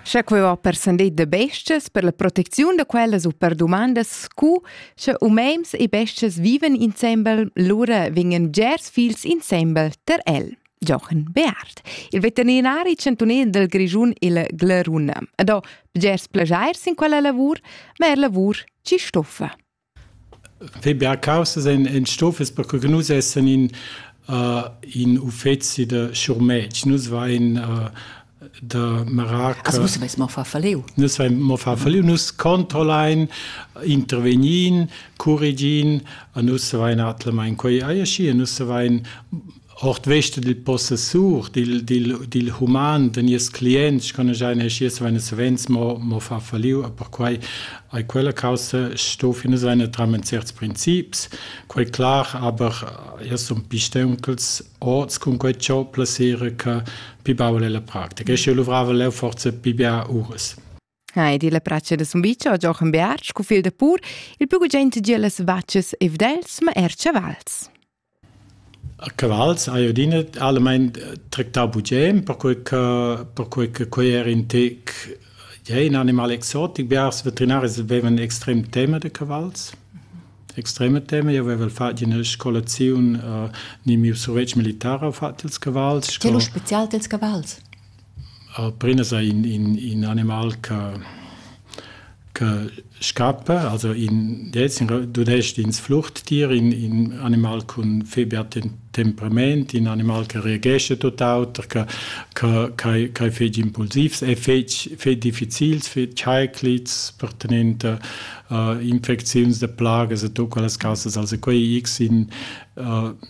Scha quei va per sendet de bestas per la protecziun da quellas u per dumandas scu sche umems e bestas viven insembel, lura vingen gers fils insembel ter el. Jochen Beard, il veterinari chantunel del Grischun il Glaruna. Ed ho bgers plageir sin quella lavur, ma er lavur ci stoffa. Fai bia caussas en, en stofas perche che nus essan in, uh, in uffeci da schurmetg. Nus vein uh, da marar che... Also nus veis mo far falliu. Nus vein mo far falliu. Nus controllein, intervegnin, curregin, a nus vein atlemein quei ei aschi, a nus vein ordvest dil possessur dil, dil, dil human da nies clients con giai neschies veine savens mo, mo fa falliu e perquei ei quella caussa sto fina seine tramen certs princips quei clar aber ja sun pisteunchels orts cun quei ciò placere che pi baul è la practica e sche luvrava leu forza pi bia uras Hai di la pratscha da Sumbicia Jochen Beartsch, cu fil de pur, il più gugent gi las vacces e vdels, ma er chavals. A cavals hai adina allamain tractau bugem, perquei che perquei che quei era in tec ja, in animal exotic. Biars veterinaris avevan extrem tema de cavals extreme teme. Io avevo fatto una scolazione, uh, ni mio survetsch militare ho fatto ils cavalls. C'è lo special dels cavalls? Alprinas ei in in in animal che che scappa, also in dez dudest ins flurtier, in in animal cun febia temperament, in animal che reagescha tut auter, che che che che fetg impulsivs e fetg fetg difficils, fetg scheiclits per tenenter infecziuns da plagas e tut quellas cassas. Also quei x in